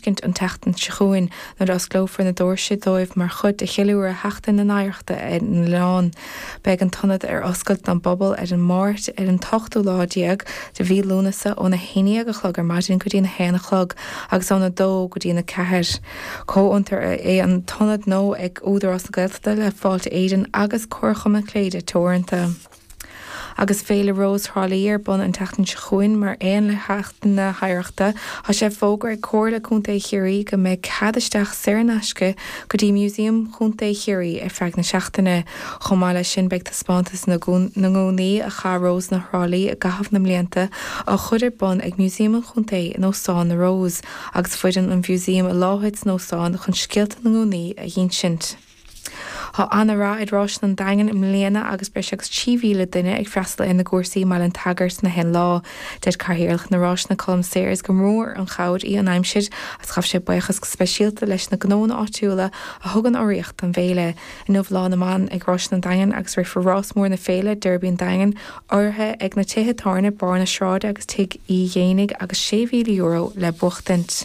fheiscint an tseachtain seo chugainn nuair a dh'osclófar na doirse dóibh mar chuid de cheiliúradh Sheachtain na hOidhreachta ar an oileán. Beidh an t-ionad ar oscailt don bpobal ar an Máirt an t-ochtú lá déag de mhí Lúnasa óna haon déag a chlog ar maidin go dtína haon a chlog agus óna dó go dtína ceathair. Comhfhiontar é an t-ionad gnó ag Údarás na Gaeltachta le Fáilte Éireann agus Comharchumann Cléire Teoranta. Agus Féile Rós Thrá Lí ar bun an tseachtain seo chugainn, mar aon le Seachtain na hOidhreachta, tá sé fógartha ag Comhairle Contae Chiarraí go mbeidh cead isteach saor in aisce go dtí Museum Chontae Chiarraí ar feadh na seachtaine. Chomh maith leis sin, beidh taispeántas na ngúnaí a chaith Rósanna Thrá Lí i gcaitheamh na mblianta á chur ar bun ag Museum an Chontae in Óstán na Rose agus foireann an Mhuseum i láthair san óstán chun scéalta na ngúnaí a dh'insint. Tá ana-rath ar Ráiseanna an Daingin i mbliana agus breis agus 3,000 duine ag freastal ar an gcúrsa i mBaile an tSagairt in aon lá. Deir Cathaoirleach na Ráiseanna Colm Sayers gur mór an chabhair í an aimsir agus ghabh sé buíochas go speisialta leis na gnónna áitiúla a thugann urraíocht don bhféile. Inniu Lá na mBan ag Ráiseanna an Daingin agus rithfear rás mór na féile, Derby an Daingin, urraithe ag na tithe tábhairne Barr na Sráide agus Tigh Uí Dhéanaigh agus €6,000 le buachtaint.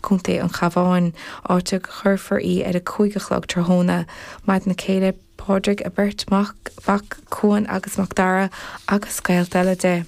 Co. an Chabháin, áit a gcuirfear í ar a cúig a chlog tráthnóna. Maireann a céile Pádraig a beirt mhac, Cuan agus Mac Dara, agus gaolta eile.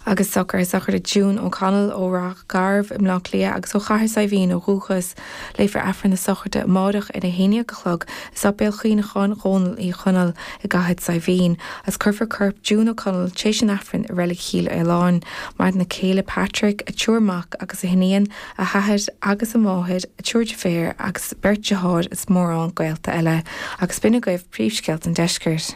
Agus socruithe sochraide June O'Connell ó Rath Garbh i mBleá Cliath agus ó Chathair Saidhbhín ó dhúchas. Léifear Aifreann na sochraide amáireach ar a haon déag a chlog i Séipéal Cuimhneacháin Dhónaill Uí Chonaill i gCathair Saidhbhín, is cuirfear corp June O'Connell tar éis an Aifrinn i Reilig Chill Fhaoláin, maireann a céile Patrick, a triúr mac agus a hiníon, a hathair agus a máthair, a triúr deirféar agus beirt dearthár is mórán gaolta eile. Agus sin agaibh príomhscéalta an Deiscirt.